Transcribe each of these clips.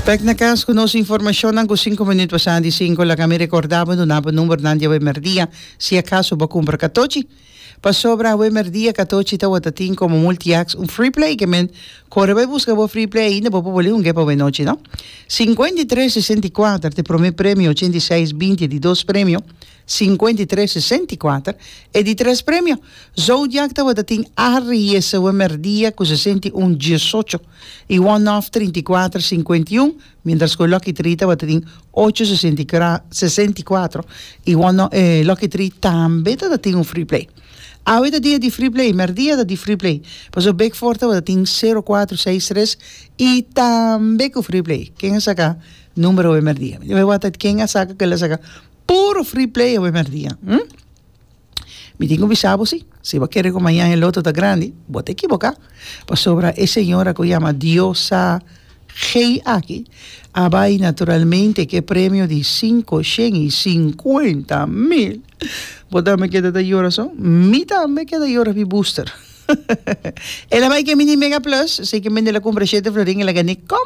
Bek na cas cu nos informacionnan cu cinco minuut pasá di cinco. Laga mi recorda bo duna bo numbernan di awe merdia si acaso bo cumpra catochi. Pasobra awe merdia catochi tawata tin como multiax un free play que men core bay busca bo free play ainda bo por bolí hungué pa awe nochi no. Cincuenta y tres sesenta y cuater te prome premio ochenta y seis binti di dos premio Sinkuenta i tres sesenta i kuater e di tres premio. Zodiak tabata tin Ariese we merdia ku sesenta i un diesocho i One-Off trinta i kuater sinkuenta i un, mientras ku e Lucky Three tabata tin ocho sesenta i kra sesenta i kuatro i One-Off e Lucky Three tambe tabata tin un Free Play. Awe ta dia di Free Play, merdia ta di Free Play paso Big Four tabata tin sero kuatro seis tres i tambe ku Free Play. Ken a saka numero we merdia? Mi ta wak ata ken a saka kel a saka. Puro free play awe mèrdia hm mi tin ku bisa bo si si bo kere ku mañan e loto ta grandi bo ta ekiboká pasobra e señora ku yama diosa gei aki a bai naturalmente ku e premio di sinku shen i sinkuenta mil bo tambe keda ta yora so mi tambe keda yora pi booster el a bai kemi di mega plus esei ke mende el a kumpra shete florin el a gané kom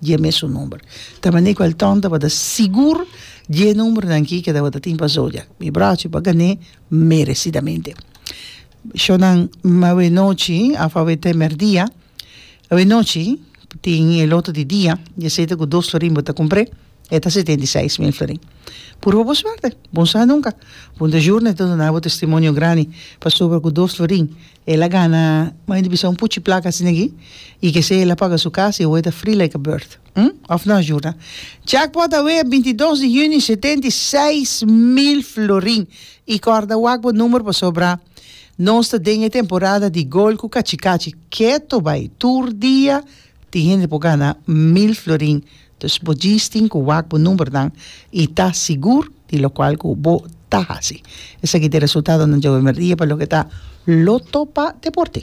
dje mes su number ta manera ku el tònt tabata sigur dje numbernan ki ke tabata tin pa zodiak mi brachi pa gan'é meresidamente shònan awe nochi of awe temer dia awe nochi tin e loto di dia dje sete ku dos florin bo ta kumpr'é e ta setenta i seis mil florin puru pa bo suerte bon sa nunka bo ta jurna i ta duna bo testimonio grandi pasobra ku dos florin El a gana mai di bisa un puchi plaka asina aki i ke esei el a paga su kas i awor e ta free like a bird. Hm? Òf nos yurnan? Jackpot awea e binti dos di hunio setenta i seis mil florin! I kòrda wak bo numero pasobra nos ta den e temporada di gol ku kachi kachi. Keto bai! Tur dia tin hende por gana mil florin. Dus bo djistin cu wak bo numbernan y ta sigur di locual cu bo ta haci. Esaki ta e resultadonan djawe merdia pa loke ta Loto pa Deporte.